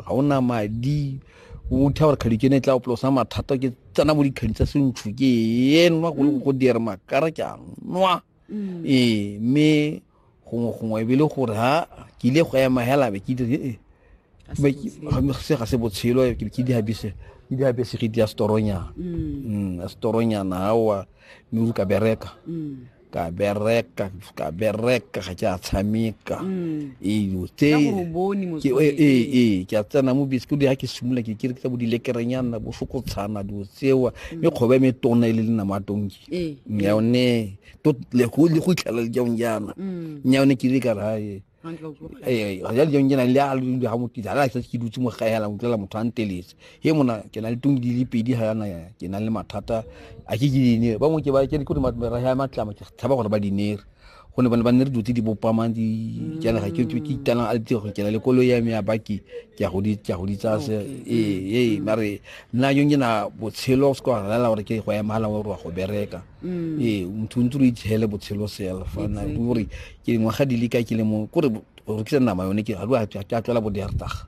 ga o na madi o tha gore kgadi ke ne e tla opolosa mathata ke tsena mo dikgadi tsa sentsho ke e nwa go le go dira makara ke a nwa mm. ee mme gongwe gongwe ebile gore ha ke ile go ema hela be ke dire ee se ga se botshelo ke ke dihabise ke dihabise ke dia storonyana mm. mm, storonyana awa mme o ka bereka mm. ka bereka ka bereka ga ke a tshameka mm. eyo tse ee ke a tsena mo bese kodi ga ke simolola ke kere ke tsa bo dilekerenyana bo fokotshana dilo tsewa mm. mme kgoba me tona e le lena mo atonki ee. yone le go itlhela le jaong jaana mm. yone ke ile ka re gae ee ga jale jang ke na le a le ga motisa a sa ke dutse mo gae ala utlwela motho a nteletse he mona ke na le tong di le pedi ga yana ke na le mathata a ke ke dinere bangwe ke ba ke re meraga ya matlama ke tshaba gore ba dinere go ne bane ba nne re dutse di bopamang di jana ga ke ke itana a ditse go kena le kolo ya me ya baki ke go di ke go di tsa se ee ee mare nna yo ngena botshelo se kwa rela gore ke go ya mala wa go bereka mm. ee motho ntse re itshele botshelo sela fa na gore ke dingwaga di le ka ke le mo kore go rekisa nama yone ke a tlwela bo diartaga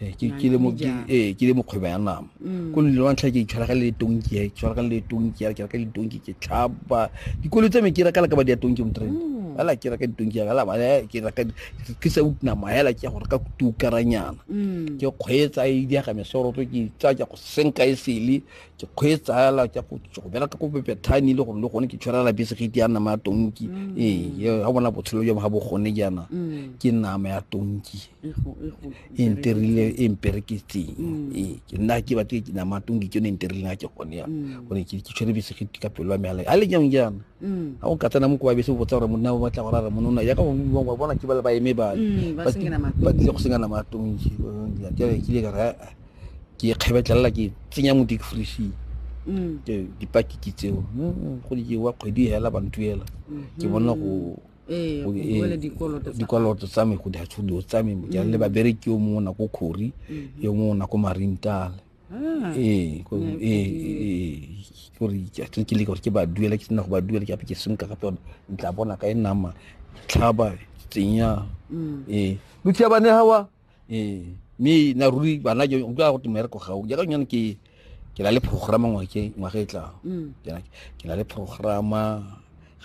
ee, ke le mokgwebo ya nama mm. ko lele wa ntlha ke itshwara ka le tonki ya itshwara ka le tonki ya ke reka ditonki ke tlhaba dikolo tse me ke reka la ka ba diatonki motrend mm. ala ke reka ditonki ya la ba ke reka ke sa utna maela ke gore ka kutu karanyana ke kgwetsa e di ga mesoro ke tsa ke go senka e sele ke kgweetsa fela ke go bereka ko bethane le gore le gone ke tshwarela bese ge di ya nama ya tonki mm. ee ga bona botshelo jwa ga bo gone jaana mm. ke nama ya tonki e nterile e mpereketseng mm. ee ke nna ke batle ke nama ya tonki ke yone e nterile ga ke gone ya gore ke tshwere bese ge ka pelo ya meala a le jang jaana ga o ka tsena mo kowa bese o botsa gore monna o batla go rara monona yaka ba bona ke ba ba eme bale ba tlile go senya nama ya tonki ke ile ka re ke e kgabetlelela ke tsenya mo deep freezing mm. ke dipaki ke tseo go di jewa kgwedi hela bantuela mm-hmm. ke bona go ee, ee, dikoloto tsa me go di hatshodiwa tsa me ke le mm. babereki yo mongwe nako khori mm-hmm. yo mongwe nako marintale ah. ee, ee gore ke leka gore ke ba duela ke sena go ba duela ke ape ke senka gape yone ntla bona ka e nama tlhaba tsenya mm. ee luthiabane gawa ee mme na ruri bana ke utlwa go te mmereko gao jaaka nyane ke ke na le programa ngwake ngwaga e tlang Mm, Ke na- ke na le programa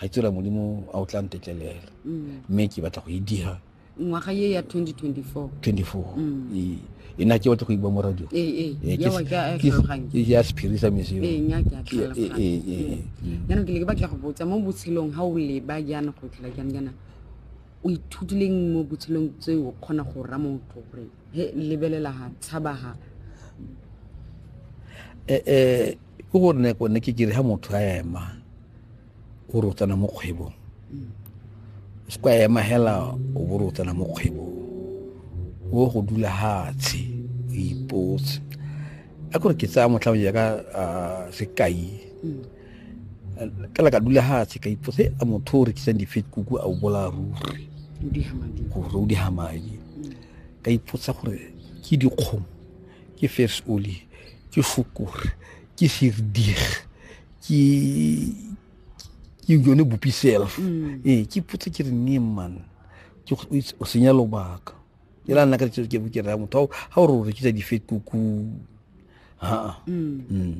ga tsira modimo a o tla ntetlelela mm. mme ke batla go e dira ngwaga ye ya 2024 24 Mm. Ee. e na ke batla go iba mo radio ee ee Ee, Eh, ke yawa se- ke a ke se- tlhaloganya ke ya sephiri sa meseo ee nya ke a Ke- ee, tlhaloganya ee, ee, ee. jaanong ke ne ke batla go botsa mo botshelong ga o leba jaana go tlola jang jaana o ithutileng mo botshelong tse o kgona go ra motho gore he lebelela ga tshaba ga eh, eh, ke gore ne kone ke kere ga motho a ema o re o tsena mo kgwebong mm. o se kwa ema hela o bo re o tsena mo kgwebong o go dula hatshe o ipotse a kore ke tsaya motlha o jaaka sekai mm. ka la ka dula fatshe ka ipotse a motho o rekisang di-fat kuku a o bolaya ruri gore o diga madi ka ipotsa gore ke dikgomo ke fes oli ke fokore ke sirdig ke yone bopi self mm. ee ke potse ke re ne man o senya lobaka e la nna ka ke bo ke raya motho ga o re o rekisa di-fat kuku haa mm. mm.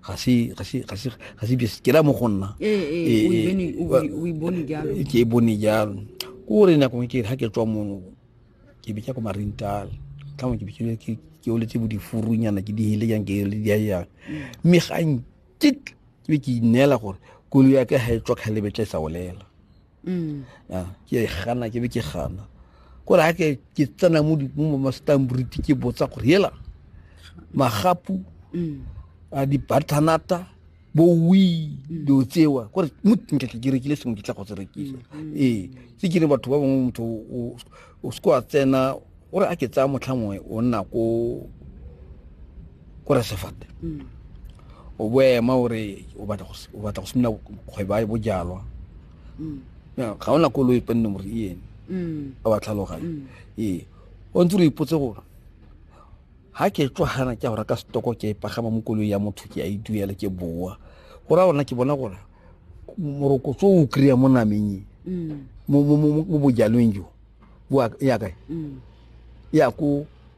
ga se ga se ga se ga se bese ke la mo go nna ee, ee, ee, o e bone jalo ke e bone jalo ke gore nakong ke ha ke tswa mono ke be ke ko marintal ka mo ke be ke ke o letse bo difurunyana ke di hele yang ke le di yang mme ga nke ke be ke inela gore kolo ya ke ha e tswa khalebe tla e sa olela mm. ah, ke e gana ke be ke gana kore ga ke ke tsena mo mastambriti ke botsa gore hela magapu mm. a dibathanata bo wi mm. dilo tsewa kore motnka ke rekile sengwe ke tla go se rekisa ee se ke re batho ba bangwe motho o seko a tsena o re a ke tsaya motlha mongwe o nna ko ko resefate mm. o boema o re o batla go simina kgweba ya bojalwa mm. ga o na koloi penne gore e ene mm. a ba tlhaloganye ee o ntse re ipotse gore ga ke tswagana ke a go reka setoko ke e pagama mo koloi ya motho ke a e duela ke boa go raya gorena ke bona gore morokotso o kry-a mo nameng e mm. mo bojalweng jo bo ya kae mm. ya ko